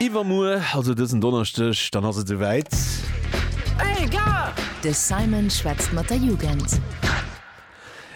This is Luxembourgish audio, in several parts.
Iwwermuer, also dësen Donneschdeg, dann ass et souwäit. De Simon schwätzt mat der Jugend.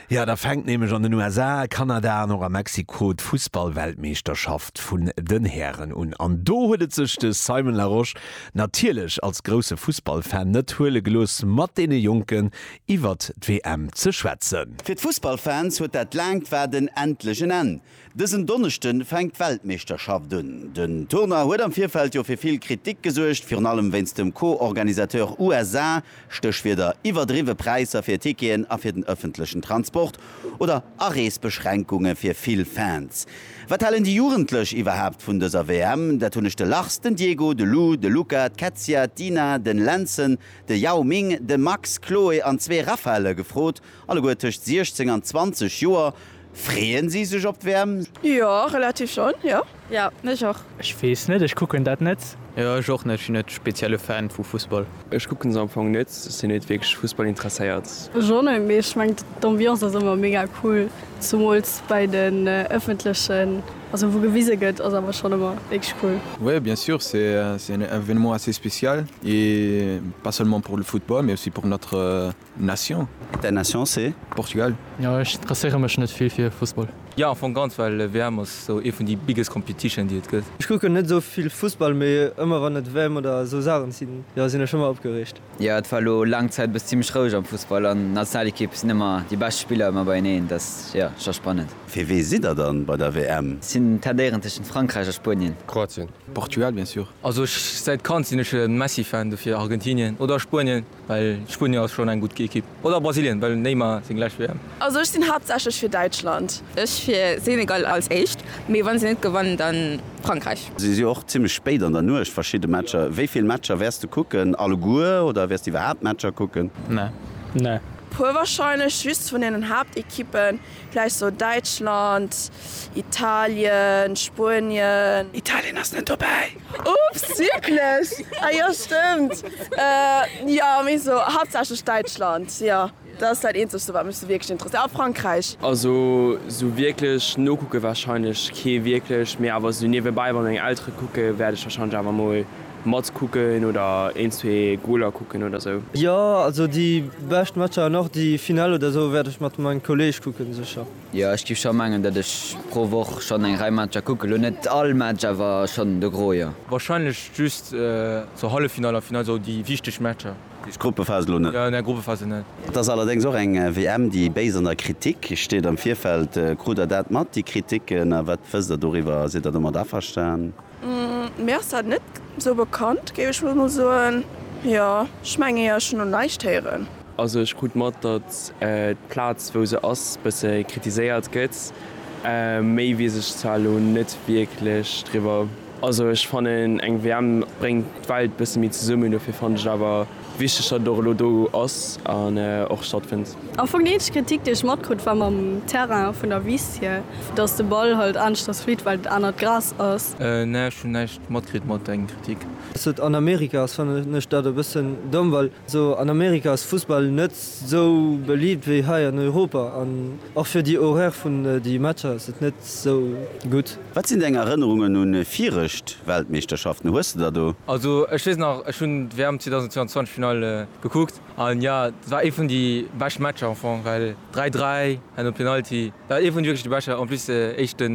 Jo, da fänkt nämlech an den USA, Kanada an och a Mexiko d'Fussballweltmeeschterschaft vun den Hären un. An do huet et sech de Simon Larosche natierlech als grousse Fussballfan net huele gelooss, mat deene Jonken iwwert d'WM ze schwätzen. Fir d'Fussballfans huet dat laangt Waarden endlech en Enn. Dësen Donneschde fänkt d'Weltmeeschterschaft un. Den Tournoi huet am Virfeld jo fir vill Kritik gesuergt, virun allem wéinst dem Co-Organisateur USA, Stéchwierder iwwerdriwwe Präisser fir Ticketen a fir den ëffentlechen Transport oder Areesbeschränkunge fir vill Fans. Wat halen déi Jugendlech iwwerhaapt vun dëser WM? Dat hunn ech de Lars, den Diego, de Lou, de Luca, d'Kätzia, d'Ina, den Lenzen, de Yao Ming, de Max, Chloe an zwee Raphaëlle gefrot. Alleguer tëscht 16 an 20 Joer. Freeën si sech op d'Wäerm? Jo, relativ schonn, jo. Jo, ech och. Ech weess net, ech kucken dat net. Jo, ech och net. Ech sinn net spezielle Fan vu Fussball. Ech kucken se am Fong net. Ech sinn net wierklech Fussball interesséiert. Ech och net, mee ech mengen d'Ambiance ass ëmmer mega cool, zumools bei den ëffentlechen, also wou gewise gëtt, ass awer schonn ëmmer wierklech cool. Oui bien sûr, c'est un événement assez spécial et pas seulement pour le football mais aussi pour notre Nation? Däin Nation c'est? Portugal. Jo ech interesséiere mech net vill fir Fussball. Jo am Fong ganz, well WM ass sou ee vun déi biggest competition déi et gëtt. Ech kucken net sou vill Fussball, mee ëmmer wann et WM oder sou Saachen sinn, jo sinn ech ëmmer opgereegt. Jo et war elo laang Zäit bes zimmlech roueg am Fussball an Nationalequipe sinn ëmmer déi bescht Spiller ëmmer beieneen, dat ass jo scho spannend. Fir wee sidd der dann bei der WM? Sinn tendéieren tëschent Frankräich a Spuenien. Kroatien. Portugal bien sûr. Also ech säit Kand sinn ech e Messi Fan, dofir Argentinien oder Spuenien. Well Spuenien ass schon eng gudd Equipe. Oder Brasilien, well Neymar seng lescht WM. Also ech sinn haaptsächlech fir Däitschland. Ech fir Senegal als éischt, mee wann se net gewannen dann Frankreich. Si si och zimmlech spéit an der Nuecht verschidde Matcher. Wéi vill Matcher wäers de kucken? Alleguer oder wäers de iwwerhaapt Matcher kucken? Nee. Puer warscheinlech, just vun den Haaptequippen. Vläicht sou Däitschland, Italien, Spuenien. Italien ass net dobäi. Oops, wierklech? Ah jo, stëmmt. Jo, mee sou haaptsächlech Däitschland, jo. Dat ass dat eenzegste wat mech sou wierklech interesséiert. A Frankräich. Also sou wierklech nokucke warscheinlech kee wierklech, mee awer sou niewebäi, wann meng Eltere kucken, wäert ech warscheinlech awer mol Match kucken oder een zwee Goaler kucken oder sou. Jo also déi bescht Matcher an och déi Finale oder sou wärt ech mat mengem Kolleg kucken secher. Jo ech giff schon mengen dat ech pro Woch schon eng Rei Matcher kucken, lo net all Match awer schon de Gros jo. Wahrscheinlech just sou Halleffinale an Finale, sou déi wichteg Matcher. Just Gruppephase lo net? Nee Gruppephase net. Et ass allerdéngs och eng WM déi béis an der Kritik steet am Virfeld. Krut der dat mat déi Kritiken a wat wësst der doriwwer? Sidd der domat averstan? Mir ass dat net sou bekannt, géif ech mol soen. Jo, ech mengen jo, ech hunn no näischt héieren. Also ech krut mat, datt d'Plaz wou se ass bësse kritiséiert gëtt. Méi weess ech zwar elo net wierklech driwwer. Also ech fannen eng WM bréngt d'Welt bësse méi zesummen, dofir fannen ech et awer. Wichteg, datt et och elo do ass an och stattfënnt. Am Fong déi eenzeg Kritik, déi ech matkrutt, war mam Terrain vun der Wiss hier, datt de Ball halt aneschters flitt, well et anert Gras ass. Nee, ech hunn näischt matkritt mat dengem Kritik. Dass et an Amerika ass fannen ech dat e bëssen domm, well esou an Amerika ass Fussball net esou beliibt wéi hei an Europa an och fir déi Horaire vun déi Matcher ass et net esou gutt. Wat sinn deng Erënnerungen un virecht Weltmeeschterschaften? Hues de der do? Also ech wees nach, ech hunn d'WM 2022 Finale gekuckt an jo dat war ee vun déi bescht Matcher am Fong well 3, 3 an e Penalty, dat war ee vun wierklech de bescher en plus éischte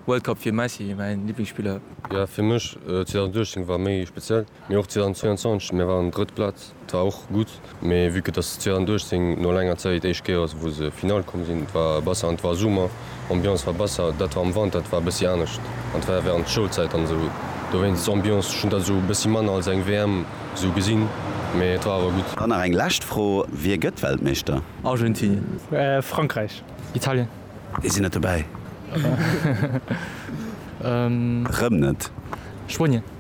World Cup fir Messi mäin Liblingsspiller. Jo fir mech 2018 war méi speziell. Mee och 2022, mir waren drëtt Plaz, war och gutt. Mee vue que dass 2018 no laanger Zäit d'éischt Kéier ass wou se Finale komm sinn, war besser an 't war Summer, Ambiance war besser, dat war am Wanter, dat war e bëssi anescht an 't war während d'Schoulzäit an esou dowéinst Ambiance, ech hunn dat esou e bëssi manner als eng WM esou gesinn, mee et war awer gutt. Dann nach eng lescht Fro, Wie gëtt Weltmeeschter? Argentinien. Frankräich. Italien. Déi sinn net dobäi. Rëm net. Spuenien.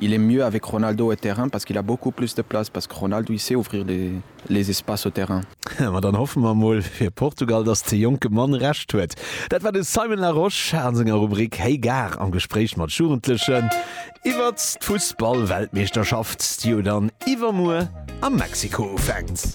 Il est mieux avec Ronaldo au terrain parce qu'il a beaucoup plus de place parce que Ronaldo il sait ouvrir les espaces au terrain. Ma dann hoffe mer mol fir Portugal, dass de jonke Mann Recht huet. Dat war de Simon Larosche a senger Rubrik Hey Gare am Gespréich mat Jugendlechen iwwert d'Fussballweltmeeschterschaft, déi jo dann iwwermuer a Mexiko ufänkt.